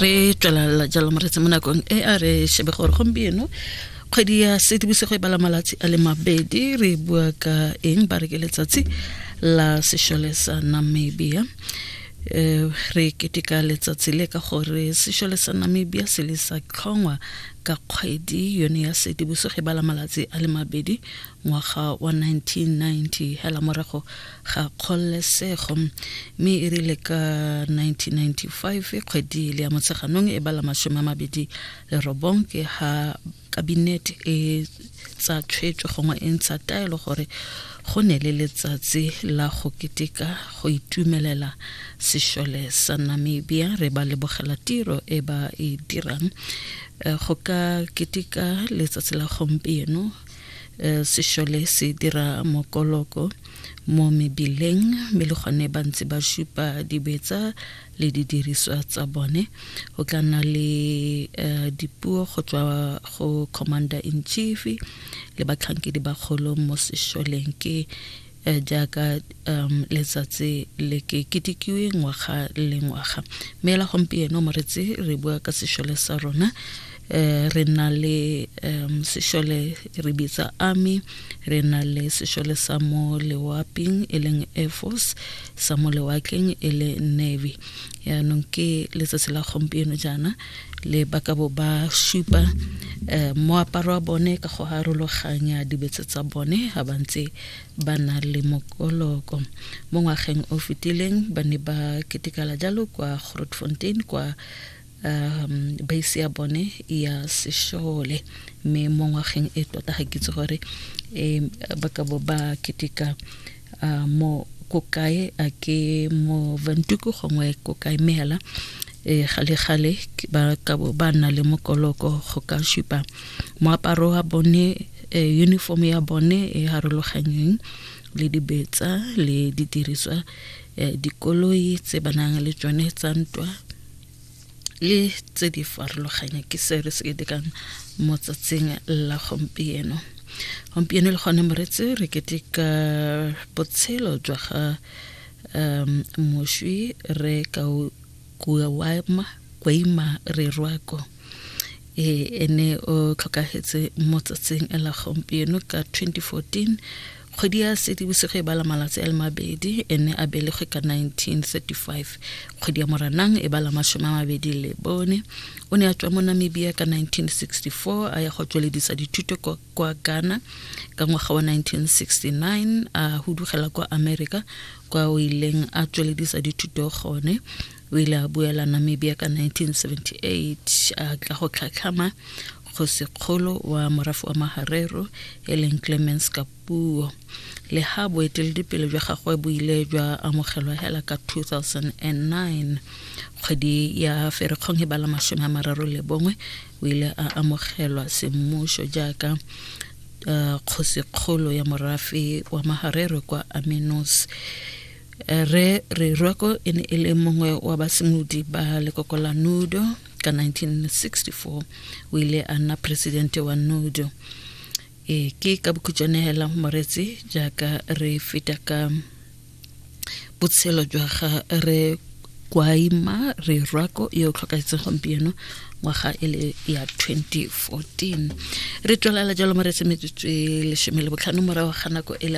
re tswelela jalo moretse mo nakong e a re shebe gore gompieno kgwedi ya sedibosego e bala malatsi a le mabedi re bua ka eng ba re ke letsatsi la sešole sa namibia um re keteka letsatsi le ka gore sešole sa namibia se le sa tlhongwa ka kgwedi yone ya sedibosego e bala malatsi a le mabedi ngwaga wa 1990 hela morago ga kgololesego mme e rile ka 1995 kgwedi le ya motsheganong e bala masome a mabedi le robong ke ha kabinete e tsa tshwetso gongwe e ntsha taelo gore go ne le letsatsi la go keteka go itumelela sešole sa namibia re ba lebogela tiro e ba e dirang eh, go ka keteka letsatsi la gompieno Eh, sešole se dira mokoloko mo mebileng mme le gone ba ntse ba supa dibetsa le didiriswa tsa bone go tla nna le eh, dipuo go tswa go commander in chief le batlhankedi bagolo mo sešoleng ke Eh, jaaka um letsatsi le ke ketikiwe ngwaga le ngwaga mme la gompieno moretsi re bua ka sešole sa rona um re na le um sešole re bitsa army re na le sešole sa mo lewaping e leng air force sa mo lewakeng e le navy yaanong ke letsatsi la gompieno jaana le ba ka bo ba supa um moaparo wa bone ka go harologanya dibetse tsa bone ga ba ntse ba na le mokoloko mo ngwageng o fetileng ba ne ba ketekala jalo kwa grotfontein kwa um base ya bone ya sešole mme mo ngwageng e tota ga ke itse gore um ba ka bo ba keteka a mo ko kae a ke mo vantuku gongwe ko kae mme hela e eh, gale gale ba ka bo ba nna le mokoloko go ka supa moaparo wa bone eh, uniform ya bone e harologanyeng le dibetsa le didiriswa eh, dikoloi tse ba nang le tsone tsa ntwa le tse di farologanya ke se re se ketekang mo tsatsing la gompieno gompieno le gone moretse re keteka botshelo jwa ga um moswi re ka kuama kwaima re rwako e ene o tlhokagetse mo tsatsing la gompieno ka 2014 kgwedi ya sedibosigo e bala malatsi a le mabedi e ne a belegwe ka 1935 kgwedi ya moranang e bala masome a mabedi le bone o ne a tswa mo namibia ka 1964 a ya go tsweledisa dithuto kwa ghana ka ngwaga wa 1969 a hudugela kwa america kwa o ileng a tsweledisa dithuto gone o ile a buela namibia ka 1978 a tla go tlhatlhama Kgosikgolo wa morafe wa Maharero e leng Clemence Kapuo. Le ha boeteledipele jwa gagwe bo ile jwa amogelwa hela ka 2009, kgwedi ya Ferikgong e bala masome a mararo le bongwe o ile a amogelwa semmušo jaaka uh, kgosikgolo ya morafe wa Maharero kwa Aminos. Re re Rwako e ne e le mongwe wa basimodi ba lekoko la Nudo ka 1964 o ile a nna presidente wa nudo e ke ka bokhutšwane hela moretse jaaka re feta ka botshelo jwa ga re kwaima re rwako yo tlhokaetseng gompieno ngwaga e le ya 2014 re tswelela jalo mo re se metsotso e lesome le botlhano morago ga nako e le